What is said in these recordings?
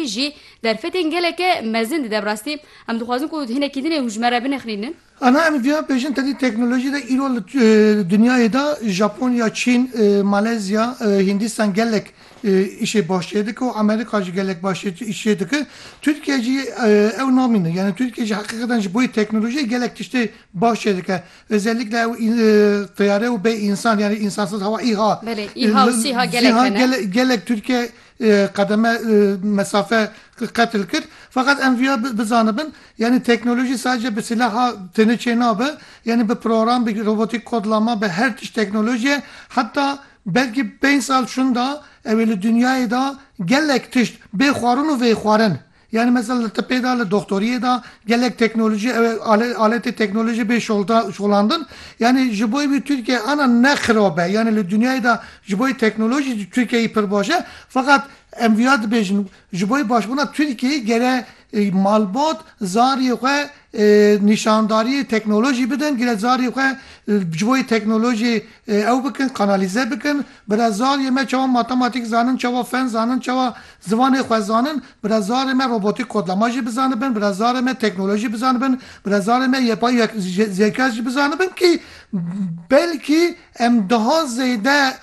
jî derfetên geleke mezin dide. Bi rastî em dixwazin ku hinekî din ê hûjmere binixlînin. Ana em vêya bêjin tevî teknolojî de îro li dinyayê de Japonya, Çîn, Malezya, Hindistan gelek îşê baş çê dike û Amerîka jî gelek baş îş çê dike. Tirkiye jî ew namîne. Yanî Tirkiye jî heqîqetan ji boî teknolojiyê gelek tiştê baş çê dike. Özellikle ew tiyare û bê însan yanî însansiz hava, îha, Belê, îha û sîha gelek hene. Gelek Tirkiye qedeme mesafe qetil kir. Feqet em via bizanibin yanî teknolojî sadece bi silaha têne çê nabe yanî bi program bi robotîk kodlama bi her tişt teknolojî ye heta belkî pênc sal şunda ew ê li dinyayê de gelek tişt bê xwarin û vê xwarin Yanî mesela li tipê de, li doxtoriyê de gelek teknolojî ew ê aletê teknolojî bê şolandin. Yanî ji bo wî Tirkiye ana ne xirab e. Yanî li dinyayê de ji bo teknolojî jî Tirkiyeyê pir baş e. Feqat em vêya dibêjin ji bo başbûna Tirkiyeyê gere malbat zarê xwe nîşandarîyê teknolojî bidin, gere zarê xwe ji bo teknolojî Ew bikin kanalîze bikin. Bira zarê me çawa matematîk zanin çawa fen zanin çawa ziwanê xwe zanin bira zarê me robotîk kodlama jî bizanibin bira zarê me teknolojî bizanibin bira zarê me yepay zeka jî bizanibin kî belkî em diha zêde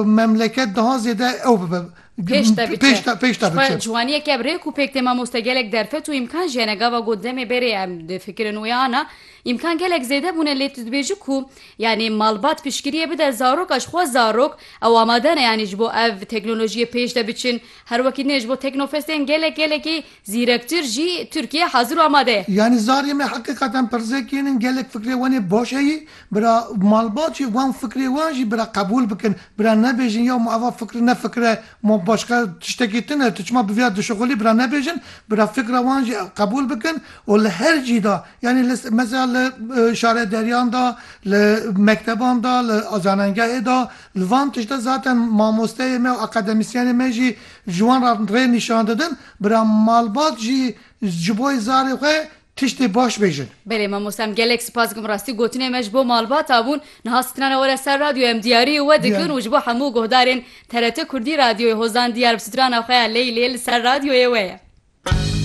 memleket diha zêde ew bibe pêşde biçe. Ciwaniyeke ev rêk û pêk tê mamoste gelek derfet û îmkan jî hene gava got demê berê em difikirin wê ana îmkan gelek zêde bûne lê tu dibêji ku Yanî malbat piştgiriyê bide zaroka ji xwe zarok ew amade ne yanî ji bo ev teknolojiyê pêş de biçin. Her wekî din jî bo teknofestên gelek gelekî zîrektir jî Tirkiye hazir û amade ye. Yanî zarê me heqîqeten pirzekên in gelek fikrê wan ê baş heye bira malbat jî wan fikrê wan jî bira qebûl bikin bira nebêjin ya ma eva fikr ne fikr e ma başka tiştekî din e tu çima bi vê ya dişixulî bira nebêjin bira fikra wan jî qebûl bikin û li her cî de Yanî li mesela li şare deriyan de, li mekteban de, li zanengehê de, li van tiştê zaten mamosteyê me û akademisyenê me jî ji wan re rê nîşan didin, bira malbat jî ji bo zarê xwe tiştê baş bêjin. Belê mamoste em gelek sipas dikim rastî gotinê me ji bo malbata bûn, niha sitinana were ser radyoyê em diyariyê we dikin û ji bo hemû guhdarên TRT Kurdî Radyoyê Hozan Diyar bi sitirana xwe ya Leylê li ser radyoyê we ye.